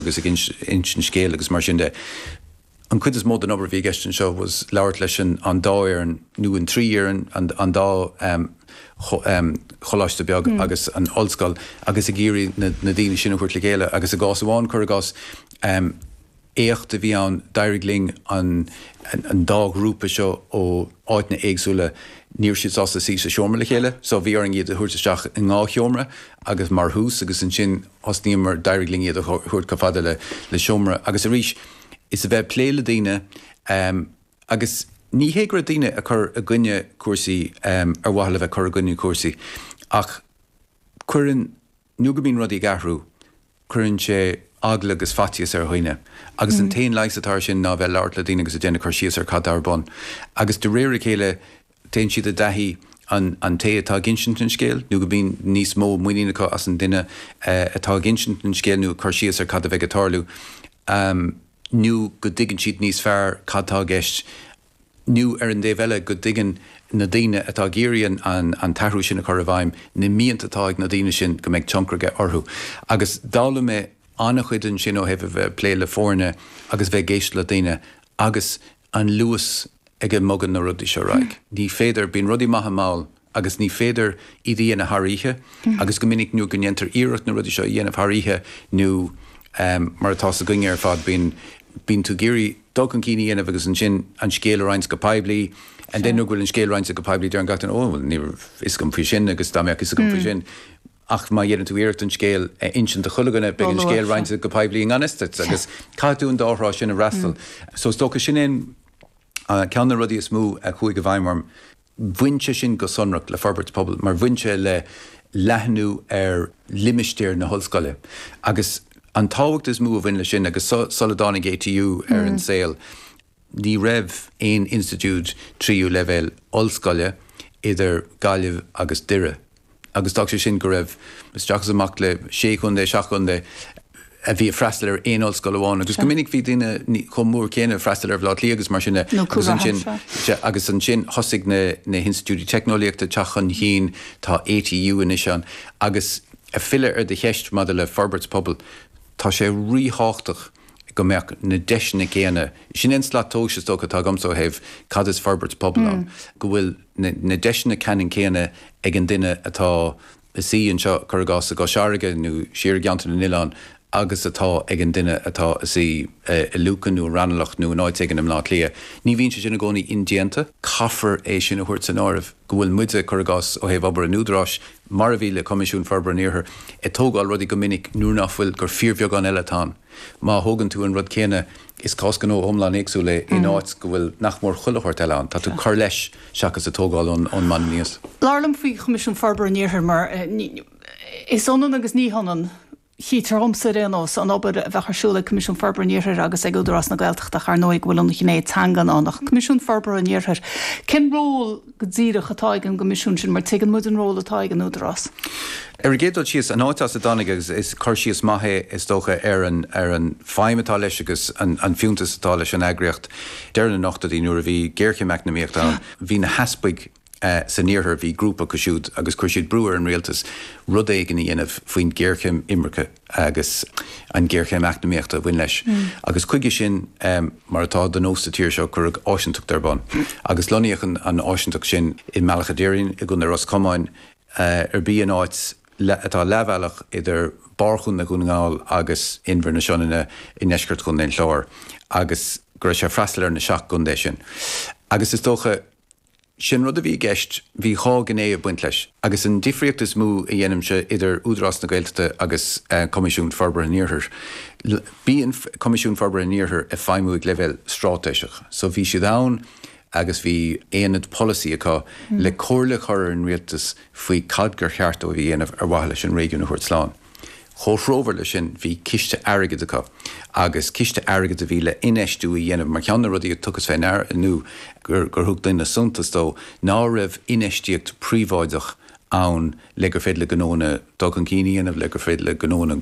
agus ag insint scéil agus mar sin de. An cuid is mó den obair a bhí i gceist anseo ná labhairt leis an dá fhoireann nó an trí fhoireann, an dá choláiste beag agus an ollscoil agus ag iarraidh na daoine sin a thabhairt le chéile agus i gcás amháin, cuir i gcás, éacht a bhí ann, d'éirigh linn an dá ghrúpa seo ó áiteanna éagsúla, ní raibh siad sásta suí sa seomra le chéile so bhí orainn iad a thabhairt isteach i ndhá sheomra agus mar thús agus ansin, thosnaíomar, d'éirigh linn iad a thabhairt chomh fada le seomra agus arís is a bheith ag plé le daoine. Agus ní hé go raibh daoine ag cur i gcoinne cúrsaí ar mhaithe le bheith ag cur i gcoinne cúrsaí, ach cuireann, nó go mbíonn rudaí ag athrú, cuireann sé eagla agus faitíos ar dhaoine. Agus an t-aon leigheas atá air sin ná a bheith ag labhairt le daoine agus ag déanamh cur síos ar cad atá ar bun. Agus de réir a chéile téann siad i dtaithí ar an té atá ag insint an scéil nó go mbíonn níos mó muiníne acu as an duine atá ag insint an scéil nó ag cur síos ar cad a bheidh ag tarlú nó go dtuigeann siad níos fearr cad tá i gceist nó ar an dtaobh eile go dtuigeann na daoine atá ag iarraidh an t-athrú sin a chur i bhfeidhm na mianta atá ag na daoine sin go mbeidh tionchar aige orthu agus d'fhoghlaim mé an-chuid ansin ó thaobh a bheith ag plé le foirne agus bheith ag éisteacht le daoine agus an luas ag a mbogann na rudaí seo ar aghaidh. Ní féidir, bíonn rudaí maithe mall agus ní féidir iad a dhéanamh thar oíche agus go minic nuair go ndéantar iarracht na rudaí seo a dhéanamh thar oíche nó mar atá sa chinniúint ar fad bíonn, bíonn tú ag iarraidh dul chun cinn a dhéanamh agus ansin an scéal a roinnt go poiblí and then nuair go bhfuil an scéal roinnte go poiblí deireann gach duine oh bhuel ní raibh a fhios agam faoi sin agus dá mbeadh a fhios agam faoi sin. Ach má dheineann tú iarracht an scéal a insint do chuile dhuine, beidh an scéal roinnte go poiblí i ngan fhios duit, agus caithfidh tú an dá thrá sin a fhreastal. So is dócha, sin é an, ceann de na rudaí is mó a chuaigh i bhfeidhm orm. Bhain sé sin go sonrach le forbairt pobail, mar bhain sé le leathnú ar limistéar na hollscoile. Agus an tábhacht is mó a bhain leis sin, agus sula dtáinig ATU ar an saol, Ní raibh aon institiúid tríú leibhéal ollscoile idir Gaillimh agus Doire agus d'fhág sé sin go raibh isteach is amach le sé chontae, seacht gcontae a bhí ag freastal ar aon ollscoil amháin agus go minic bhí daoine chomh mór céanna ag freastal ar Bhaile Átha Cliath agus mar sin de agus ansin thosaigh na hinstitiúidí teicneolaíochta ag teacht chun cinn, tá ATU anois ann agus ag filleadh ar do cheist maidir le forbairt pobail, tá sé ríthábhachtach. go mbeadh na deiseanna céanna, sin é an slat tomhais is dócha atá agamsa ó thaobh cad is forbairt pobail ann, go bhfuil na deiseanna ceannann céanna ag an duine atá i suí anseo, cuir i gcás, i gCois Fharraige nó siar i gCeantar na nOileán agus atá ag an duine atá i suí i Lucan nó i Raghnallach nó in áit éigin i mBleá Cliath. Ní bhíonn sé sin i gcónaí indéanta. Caithfear é sin a thabhairt san áireamh, go bhfuil muide, cuir i gcás, ó thaobh obair an Údaráis, mar a bhí le Coimisiún Forbartha an Iarthair, ag tógáil rudaí go minic nuair nach bhfuil, gur fíorbheagán eile atá ann. Má thógann tú an rud céanna, is cás gnó iomlán éagsúil é, in áit go bhfuil nach mór chuile shórt eile ann, tá tú ag cur leis seachas ag tógáil ón mbonn aníos. Labhair liom faoi Choimisiún Forbartha an Iarthair mar is ionann agus ní hionann. Chítear dhomsa, ar aon nós, an obair a bheadh ar siúl ag Coimisiún Forbartha an Iarthair agus ag Údarás na Gaeltachta ach, ar ndóigh, go bhfuil an ghné teanga ann ach an Coimisiún Forbartha an Iarthair. Cén ról go díreach atá ag an gCoimisiún sin mar tuigeann muid an ról atá ag an Údarás? Ar an gcéad dul síos, an áit as a dtáinig agus is cur síos maith é, is dócha, ar an ar an feidhm atá leis agus an an fiúntas atá leis an eagraíocht. Deireadh na n-ochtóidí nuair a bhí géarchéim eacnamaíochta ann, bhí na heaspaig, san iarthar bhí grúpa acu siúd agus chuir siad brú ar an rialtas rud éigin a dhéanamh faoin ghéarchéim imirce agus an ghéarchéim eacnamaíochta a bhain leis agus chuige sin, mar atá de nós sa tír seo, cuireadh áisinteacht ar bun agus lonnaíodh an áisinteacht sin i mBealach a' Doirín i gContae Ros Comáin, arb í, an áit atá leathbhealach idir barr Chontae Dhún na nGall agus Inbhir na Sionainne i ndeisceart Chontae an Chláir agus go raibh sé ag freastal ar na seacht gcontae sin agus is dócha. Sin rud a bhí i gceist, bhí dhá ghné ag baint leis. Agus an difríocht is mó a dhéanaimse idir Údarás na Gaeltachta agus Coimisiún Forbartha an Iarthair, bíonn Coimisiún Forbartha an Iarthair ag feidhmiú ag leibhéal stráitéiseach. So bhí siad ann agus bhí aonad polasaí acu le comhairle a chur ar an rialtas faoi cad gur cheart dóibh a dhéanamh ar mhaithe leis an réigiún a thabhairt slán. Comhthreomhar leis sin, bhí ciste airgid acu agus ciste airgid a bhí le infheistiú a dhéanamh mar cheann de na rudaí a tugadh fé ndear nó gur thug daoine suntas dó ná raibh infheistíocht príobháideach ann le gur féidir le gnóanna dul chun cinn a dhéanamh, le gur féidir le gnóanna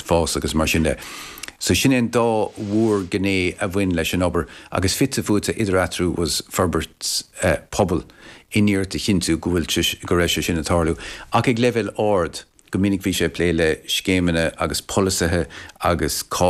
fás agus mar sin de. So sin é an dá mhór gné a bhain leis an obair agus fite fuaite idir eatarthu bhí forbairt pobail in iarracht a chinntiú go bhfuil sé, go raibh sé sin ag tarlú ach ag leibhéal ard. Go minic bhí sé ag plé le scéimeanna agus polasaithe agus cá